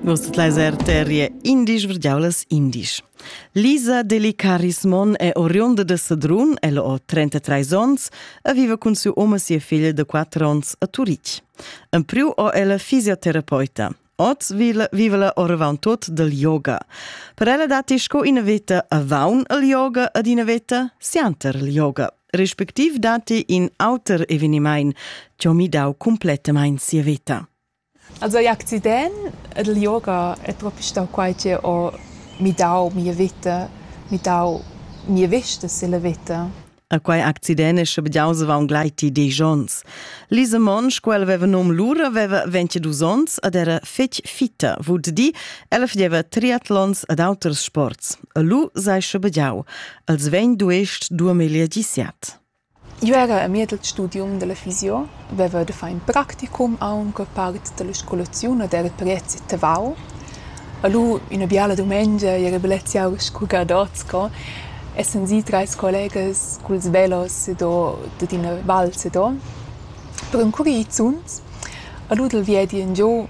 Vus tut leis arteria indisch verdiaulas indisch. Lisa Delicaris Mon è oriunda de Sedrun, ella ho 33 ons e vive cun siu om e sia figlia de 4 ons a Turitg. En priu ho ella fisioterapeuta. Oz vive la oravant tot del yoga. Per ella dati sco ina veta a vaun el yoga ed ina veta sianter el yoga. respectiv datti in auter evenimaint chi ho midau cumplettamaing sia veta. Also l'accident ed il yoga è propi stau quai che ho midau mia vita, midau mia vista sulla vita. A quai accident è sche bediauseva un gleiti disch ons. Lise Monsch, quel aveva num lura, aveva 22 ons ed era fetg fitta, vud di, ella fideva triatlons ed auters sports. E lu sei sche bediau, els vegn duest duemila disiat. Eu era a mier del studium della fysio, veva de far in practicum aunque part della scolaziun ed era prezi tavau. E lu ina biala dumengia era beleziau scu gadots co, essan si treis collegas culs velos do dad ina val se do per encurir zuns. E lu dal viedi in giu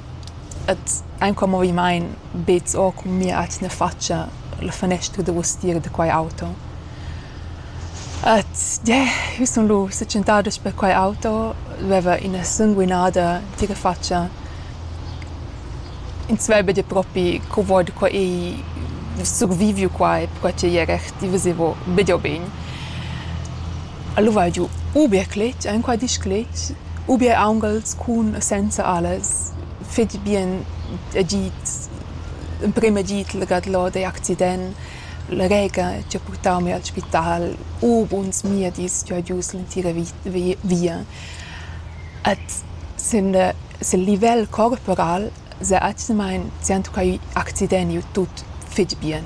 Et aint quel movimaint beds eau cun mia atgna fatscha la fanestra da ustier da quai auto. Et yeah, eu sun lù sa tschentada sper quai auto, veva üna sanguinada entira fatscha. Ins veva dir propi co vo da qua e surviviu quai, perquai ch'ei era recht, i vesevo be dir begn. El ho val giu u bia cletg enqual disclets, u bia aunghels cun e senza alas, fetg bien agid, emprem agid legà dal ot ei accident, la rega chi ha purtau mi al spital, u buns miedis chi ho gius l'entira vi- via. Ed sin sil livel corporal s'ha atgnamein sentucau accident giu tut fetg bien.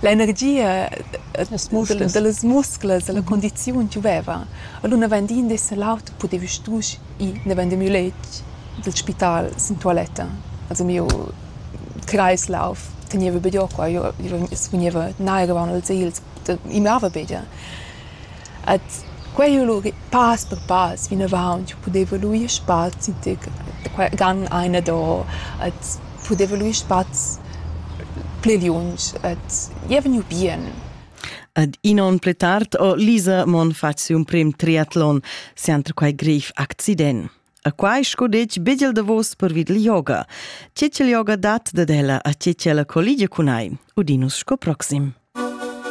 L'energia dallas musclas, dalla condiziun giuveva. Allura naven dess l'aut pudevi stusch ir naven da miu letg dil spital sin tualetta. Also miu Kreislauf tegneva be giu qua, io sfugneva nair avon als egls, i mava be gia. Ed quei ei lur pass per pass vinavant jeu pudeva luir spazi digl qua gang einado ed pudeva luir spazs pli liunsch ed jeu vegniu bien. Ed in onn pli tard ho Lisa Monn fatg siu emprim triatlon sienter quei grev accident. E quai sco detg bigl davos pervid il yoga. Tge che il yoga dat dad ella a tge che ella colligia cun ei, udinus sco proxim.